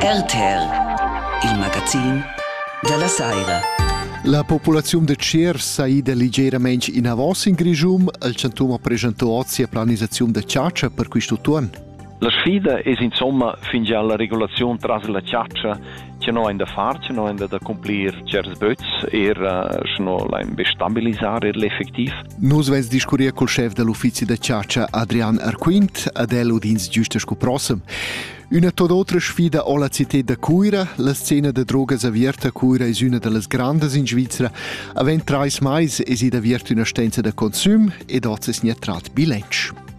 RTL, il magazin dalla saira. La populaziun da Tsier sa ida ligeramain inavos in Grischun. Il chantun ha presentà oz sia planisaziun da chatscha per quest utun. La sfida es insomma fingià la regulaziun tras la chatscha Che no ein da far, che no ein da accomplir certs böts, era sche no lain be stabilisar er l'effectiv. Nus veis discurrir col chef dell uffizi da chatscha Adrian Arquint ad el udins giusta sco prossem. Üna tot otra sfida ho la cited da Cuira, la scena da drogas aviarta a Cuira es üna da las grandas in Svizra. Avent trais mais es id aviert üna stenza da consüm ed hoz es gnatrat bilanc.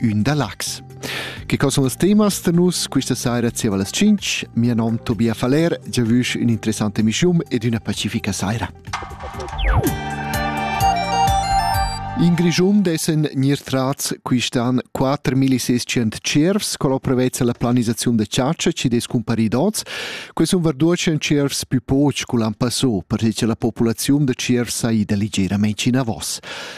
ün da Lax. Che co son las temas da nus questa saira zieva las 5? Mia nom Tobia Faller, giavüsch ün interessante emischium ed üna pacifica saira. In Grischun dessen gnir trats quist'an 4600 cervs con l'opera vezza la planisaziun de ciaccia ci des cumpari dots, que sun verduocen cervs più poch cu l'an passò, perché la populaziun de cervs saida ligeramente in avos.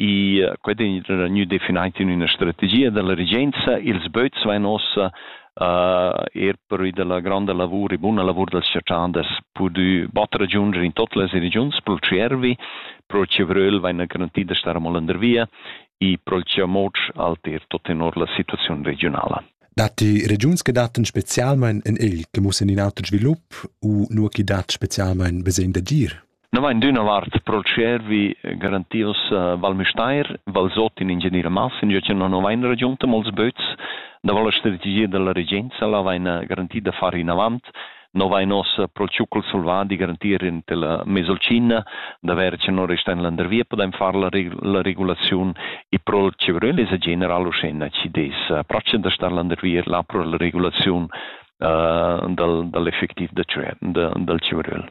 e quei ei gnü definitiv üna strategia dalla regenza. Ils böts vain ossa uh, er pervi della gronda lavur e buna lavur dels cerchanders pudü botter giunger in tot las regiuns pro Tschiervi, pro Cevröl vaina garanti da star amol under via e pro Ciamoc alter tot tenor la situaziun regionala. Datti regiuns che dattan specialmein in il che mussen in auter svilup u nur chi dat specialmein besegn d'agir? No vain d'üna vart pro tschiervi garantios Val Müstair, Valsot in Ingenieur Massinger che non vain ragiunta mols böts, davo la strategia della regenza la vaina garanti da far inavant, no vain ossa pro tschucol selvadi garantir in tela Mesolcina, d'aver che non resta in landervia podem far la, reg la regulaziun e pro il Cevrel es a general uschena ci des pracce da star landervia là pro la regulaziun uh, dal, dall'effectiv da, da, dal Cevrel.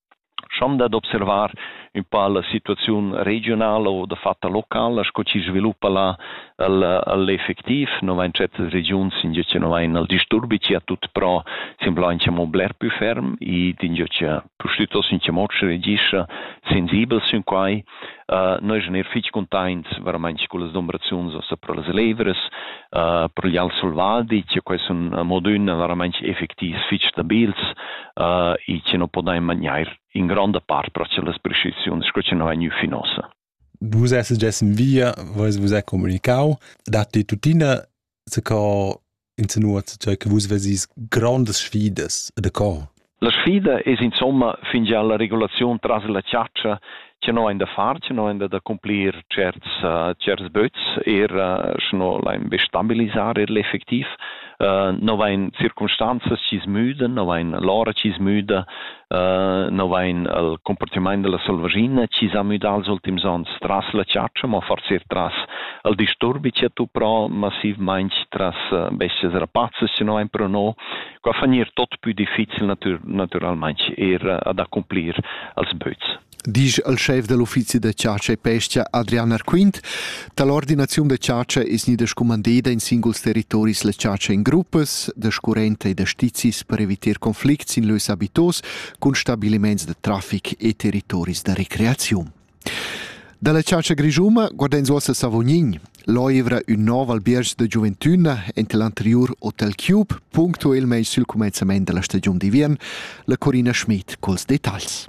schon dad observar ün pa la situaziun regiunala o dafatta locala sco chi sviluppa là al al effectiv. No vain certas regiuns ingio cha no vain al disturbi chi a tut pro semblaincha amo bler pü ferm ed ingio cha pustüttos ün chamoc regischa sensibel sün quai. Uh, noi sun eir fich cuntaints veramaing cullas dumbraziuns ossa pro las levras, uh, pro gli al selvadi, che quai sun modün veramaing effectivs fich stabils uh, e che non podain magnair in gronda part pro las prescriziuns sco che non vegnu fin ossa. Vus esses gess in via, vois vus è comunicau, datti tuttina co insinuat cioè che vus vesis grandes sfidas da co La sfida es insomma fingià la regulaziun tras la chatscha che no hain da far, che no hain da accomplir tscherts uh, tscherts böts, eir uh, sche no lain be stabilisar eir l'effectiv. Uh, no vain circumstanzas chi's müdan, no vain l'ora chi's müda, no vain il cumpartimaint da la selvaschina chi s'ha müdà els ultims ons tras la chatscha, mo forsa eir tras il disturbi chi ha tuprà massivmaing tras bes-chas rapazzas chi no vain però no. Qua fa gnir tot pü difficil natüralmaing eir ad accumplir els böts. disch al schef da l'uffizi da chatscha e pescha Adrian Arquint, da l'ordinaziun da chatscha es gnida scumandeda in singuls territoris la chatscha in gruppas da scurrenta e da stizis per evitar conflicts in lös abitos cun stabiliments da traffic e territoris da recreaziun. Dalla chatscha grischuma guardens uossa Savognin. L'oivra ün nov albierg da giuventüna ente l'anteriur Hotel Cube, punctuelmaing sül cumenzament della stagiun d'ivern, la Corina Schmid culs detagls.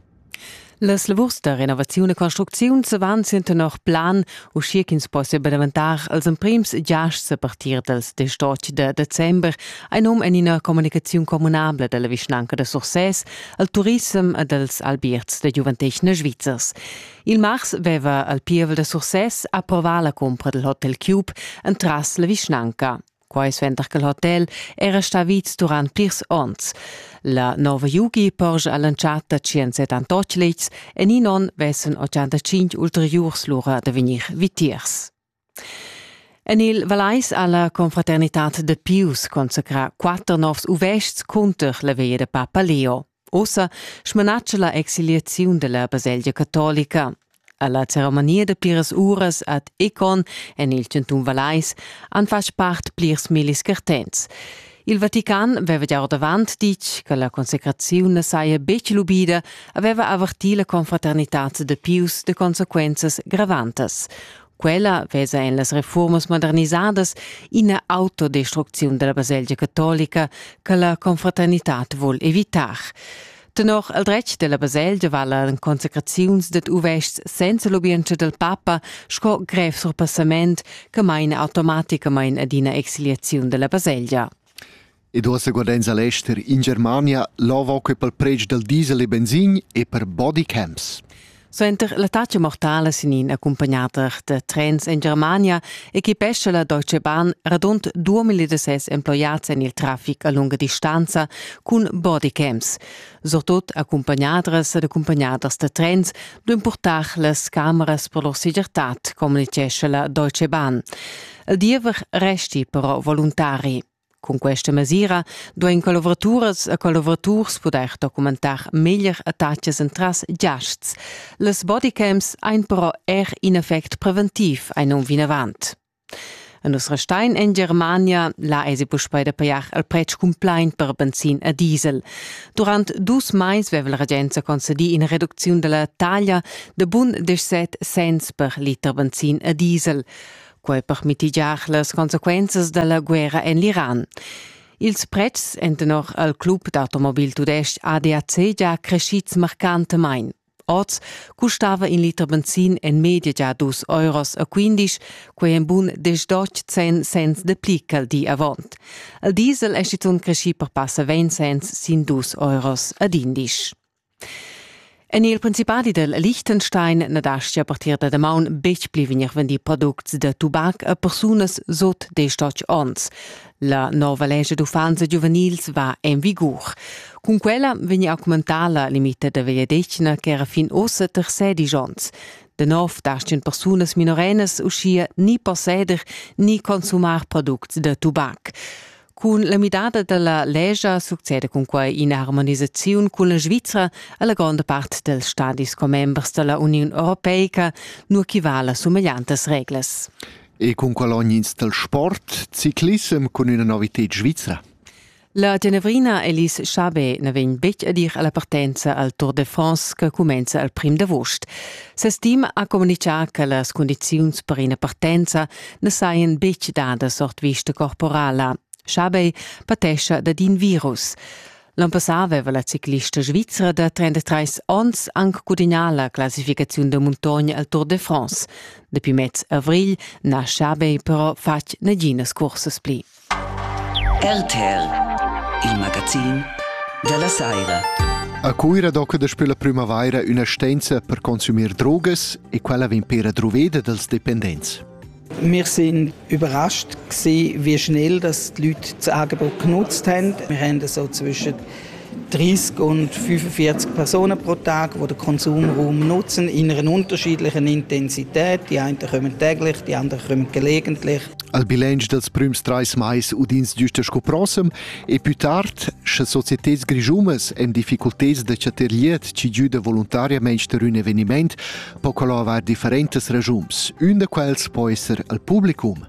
Las lavurs da renovaziun e construcziun van sin tenor plan, uschia ch'ins possia be daventar als emprims giasts a partir dals 18 de december, ha num en ina communicaziun communabla dalla vischnanca da Sursès al turissem e dals albierts da giuventetgna svizzers. Il mars veva al pievel da Sursès approvà la cumpra dal Hotel Cube entras la vischnanca. Quai suenter che l'hotel era stà vids durant plirs onns. La nova Yugi porscha all'entschatta 178 letgs en in onn vessen 85 ulteriurs lura da vegnir vitiers. En il Valais ha la Confraternitad de Pius consacrà quatter novs uvests cunter la veia de Papa Leo. Ossa smanatscha la exiliaziun della baselgia catolica. Alla ceremania de pliras uras ad Econ en il centum Valais han fatg part plirs millis cartents. Il Vatican aveva già ordavant ditg che la consecraziun ne saja betg lubida, aveva avertì la confraternità de Pius de consequenzas gravantas. Quella vesa en las reformas modernisadas ina autodestrucziun della baselgia catolica che la confraternitad vul evitar. Tenor il dretg della baselgia valan consecraziuns ded uvests senza l'ubientscha del papa sco grev surpassament che maina automaticamain ad ina exiliaziun della baselgia. ed uossa guardains a l'ester in Germania l'ova que pel predsch dal diesel e benzin e per body camps. Suenter l'attacca mortala sin in accumpagnader da trens en Germania equipescha la Deutsche Bahn radund 2006 emploiats en il traffic a lunga distanza cun bodycams. Surtut accumpagnadras ed accumpagnaders da trens duin portar las cameras per lur segirtad, communicescha la Deutsche Bahn. Il diever resti però voluntari. Cun questa mesira duein collavoraturas e collaboraturs pudair documentar meglier attacas entras giasts. Las bodycams ein però er in effect preventiv ein um vinavant. A nus restein en Germania, là esi puspei da pajar al pretsch cumplaint per benzin e diesel. Durant dus mais veva la regenza concedi ina reducziun della taglia de bun 17 cents per liter benzin e diesel. quai per mitigiar las consequenzas da la guerra en l'Iran. Ils pretschs èn tenor al club d'automobil tudestg ADAC già crescids marcantamain. Oz custava in liter benzin en media già dus euros a quindisch, quei en bun desdotg cent cents de pli ch'al di avant. Il diesel è schizunt creschì per passa 20 cents sin dus euros ad indisch. En il principadi del Liechtenstein na dastia a partir da damaun betg pli vegnir vendì products da tubac a persunas sut destotg onns. La nova lescha d'uffants giuvenils va en vigur. Cun quella vegnia a aumentar la limita da vegliadetgna ch'era fin ossa tersedisch onns. De nov dastien persunas minorenas uschia ni posseder ni consumar products da tubac. Cun la midada dalla legia succeda cun quai ina harmonisaziun cun la Svizra alla gronda part dels stadis commembers dalla Uniun Europeica, nur chi vala sumegliantas reglas. E cun qual ognins del sport ciclissem cun üna novited svizra? La Genevrina Elis Chabet ne vegn betg a dir alla partenza al Tour de France che comenza al prim d'agost. Ses team ha comunichà che las condiziuns per ina partenza ne sajan betg dadas ord vista corporala. Schabei patescha dad in virus. L'on passà aveva la ciclista svizzera da 33 onns anche gudignà la classificazione da montagne al Tour de France. Dapi mez avrigl n'ha Schabei però fatg naginas cursas pli. RTL, il magazin dalla saira. A Cuira doca daspö la prümavaira üna stenza per consumir drogas e quella vegn pera druveda dals dependents. Wir sind überrascht gewesen, wie schnell das die Leute das Angebot genutzt haben. Wir haben so zwischen 30 und 45 Personen pro Tag, die den Konsumraum nutzen in einer unterschiedlichen Intensität. Die einen kommen täglich, die anderen kommen gelegentlich. Al bilanc dels prüms trais mais udins giusta sco prossem e più tard, sche societats grischumas en difficulteds da chatter liet ci giuda voluntariamente per un eveniment, po quello avair differentes ragiums. Un da quels può essere al publicum.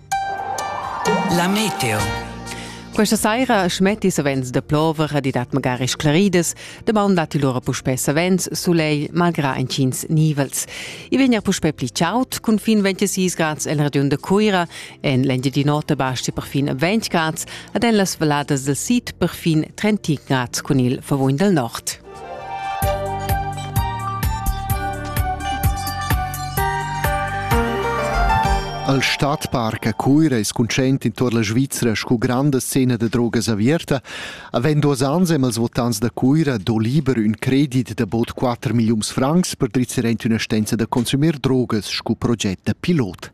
La meteo. Questa saira schmetti savens de plover e dat magari sclaridas. Damaun datti lura puspè savens sulegl, malgrà intgins nivels. I vegn er puspè pli chaud, cun fin 26 grads en regiun de Cuira. En l'engiadina nota basti per fin 20 grads, ed en las valladas del sid per fin 30 grads cun il favugn del nord. Al Stadtpark a Cuira es conscient intuor la Svizra scu granda scena da drogas averta. Avend duos ans amb els votants da Cuira do liber ün credit da bod 4 milliuns francs per drizzar aint üna stenza da consumer drogas scu proget da pilot.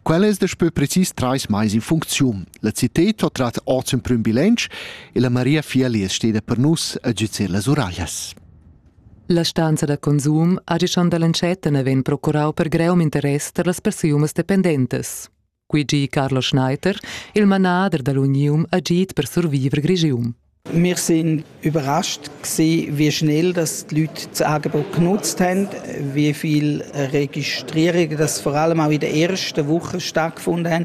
Quel es daspö precis trais mais in funcziun. La cited ho trat hoz ün prüm bilanc e la Maria Fieli es steda per nus a güzer las uraglias. La stanza da consum ha gischond dall'entschatta naven procurau per greum interess per las persunas dependentas. Qui gi Carlo Schneider, il manader dall'Unium, ha git per survivre Grigium. Wir sind überrascht gewesen, wie schnell dass die Leute das Angebot genutzt haben, wie viele Registrierungen das vor allem auch in der ersten Woche stattgefunden haben,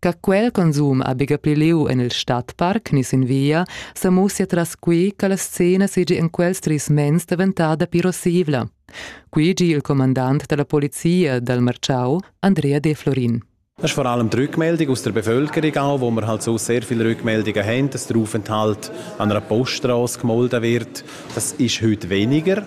Ca quel consum ha biga pli liu en il stadparc ni sin via, sa mussia tras qui che la scena seigi en quels tris mens daventada pli rossivla. Qui gi il comandant dalla polizia dal Marciau, Andrea De Florin. Das ist vor allem die Rückmeldung aus der Bevölkerung auch, wo man halt so sehr viele Rückmeldungen haben, dass der Aufenthalt an einer Poststraße gemolden wird. Das ist heute weniger.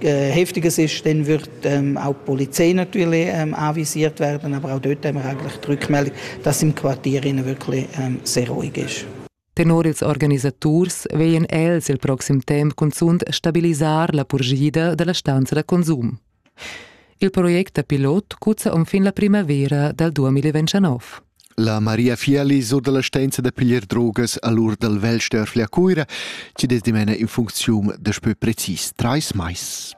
heftiges ist, dann wird ähm, auch die Polizei natürlich ähm, anvisiert werden, aber auch dort haben wir eigentlich die Rückmeldung, dass im Quartier wirklich ähm, sehr ruhig ist. Tenor ils organisaturs veien els il proxim temp cunzunt stabilisar la purgida della stanza da consum. Il progetto pilot cuzza um fin la primavera dal 2019. La Maria Fieli sur dalla stenza da piglier drogas a l'ur dal vel Störfli a Cuira, chi des dimena in funcziun daspö precis trais mais.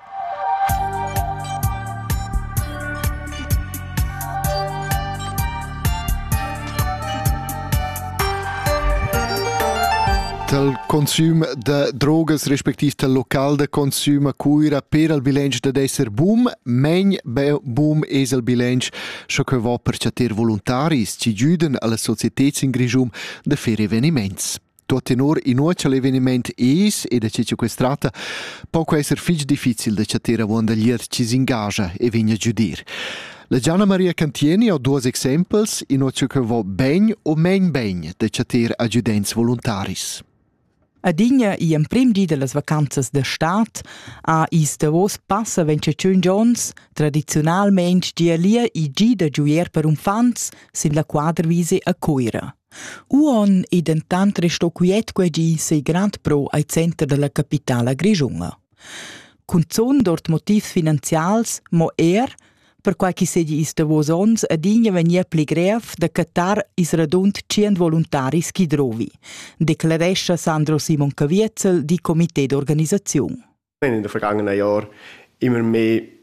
tal consum da drogas respectiv tal local da consum a Cuira per al bilanc da d'esser boom, men be boom es al bilanc sco cheu va per chatter voluntaris chi güdan alla societed in Grischun da fer eveniments. Tuot tenor inuocha l'eveniment es, e da che che quest tratta, po esser fich difficil da chatter avuondalier chi s'ingagia e vegna a giudir. La Gianna Maria Cantieni ha duos exempels, inuocha che va ben o main ben da chatter agiudents voluntaris. Adina i emprim di dallas vacanzas da stad ha ils davos passa ventschatschun gions tradiziunalmein gia lia il gi da giuer per uffants sin la quadrvise a Cuira. Uonn ei dentant resto quiet quei gi sei grand pro al center dalla capitala grischunga. Cunzun dort motivs finanzials, mo er perquai ch'i seigi i's davos onns adina vegnir pli grev da cattar ils radund tschient voluntaris chi drovi, declarescha Sandro Simon Caviezel, di comité d'organisaziun. In den vergangenen Jahren immer mehr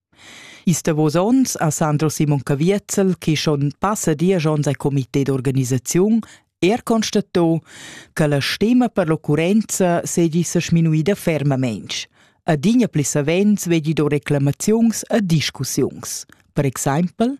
Ils davos onns ha Sandro Simon Caviezel, che schon passa diesch onns al comité d'organisaziun, er constato che la stima per l'occurrenza seigi sa sminuida fermamain. Adina pli savens vegli do reclamaziuns e discussiuns. Per exempel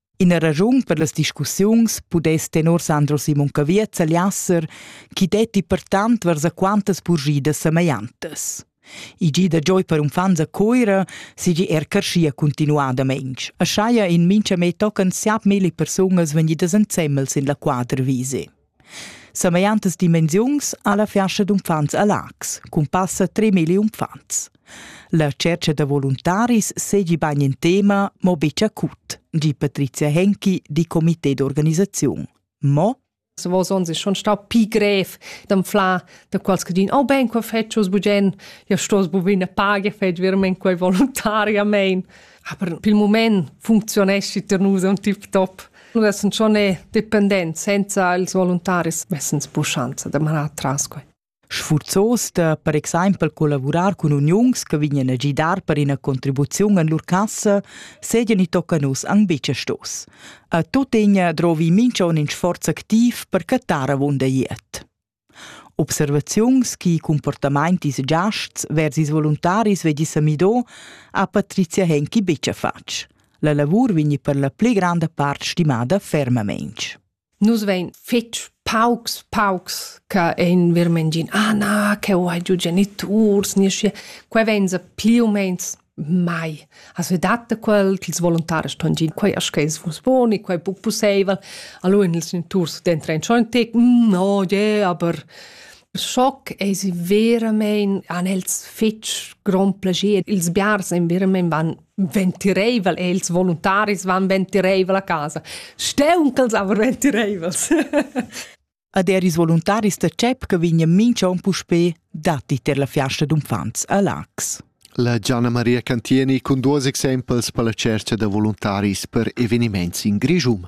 Ina raschun per las discussiuns pudess tenor Sandro Simon Caviez Liasser chi detti pertant vers a quantas purgidas semegliantas. I gi da gioi per unfants a Coira sigi er carschia continuadamaing. A schaia in mincha me tocan siap milli persungas vegnidas ensemmel sin la quadrvise. Samegliantas dimensiuns ha la fiascha d'uffants a Laax, cun passa 3.000 uffants. La tschercha da voluntaris seigi bagn in tema, mo betg acut, di Patrizia Henki di comité d'organisaziun. Mo se vos ons è schon stau pi grev d'anflar da quals che din, oh ben, qua fetschus bugen, ja stos bu bine page, fetsch vermen quei voluntariamein. Aber pil moment funzioneschi ter nus un tip top. Nun essend schon e dependent senza ils voluntaris messens pushanza da manar tras quai. Sfurzos da per exempel collavurar cun uniuns che vignan a gidar per ina contribuziun en lur cassa, sedia ni tocca nus an bice stos. A tuttegna drovi mincha un in sforz activ per cattar avunda iet. Observaziuns chi cumportamaint ils giasts vers ils voluntaris vegli Samido ha Patrizia Henki betg fatg. La lavur vegni per la pli granda part stimada fermamaintg. Nus vein fetg paucs, paucs che ein verment gin, ah na, che ho hai giu geniturs, nisce, quei vein sa pli u meins mai. As vi datta quel ch'ils voluntaris ston gin, quai as che es vus bon e quai puc pusseivel. Allora in ils inturs dentro in schon tic, mm, oh yeah, aber Schock es verament an els fitg grond plagier. Ils biars en verament van ventireivel e ils voluntaris van ventireivel a casa. Steunchels aber ventireivels. Ad er ils voluntaris da CEP che vegnan minch'on puspè datti ter la fiasta d'uffants a Lax. La Gianna Maria Cantieni cun duos exempels per la tschercha da voluntaris per eveniments in Grischum.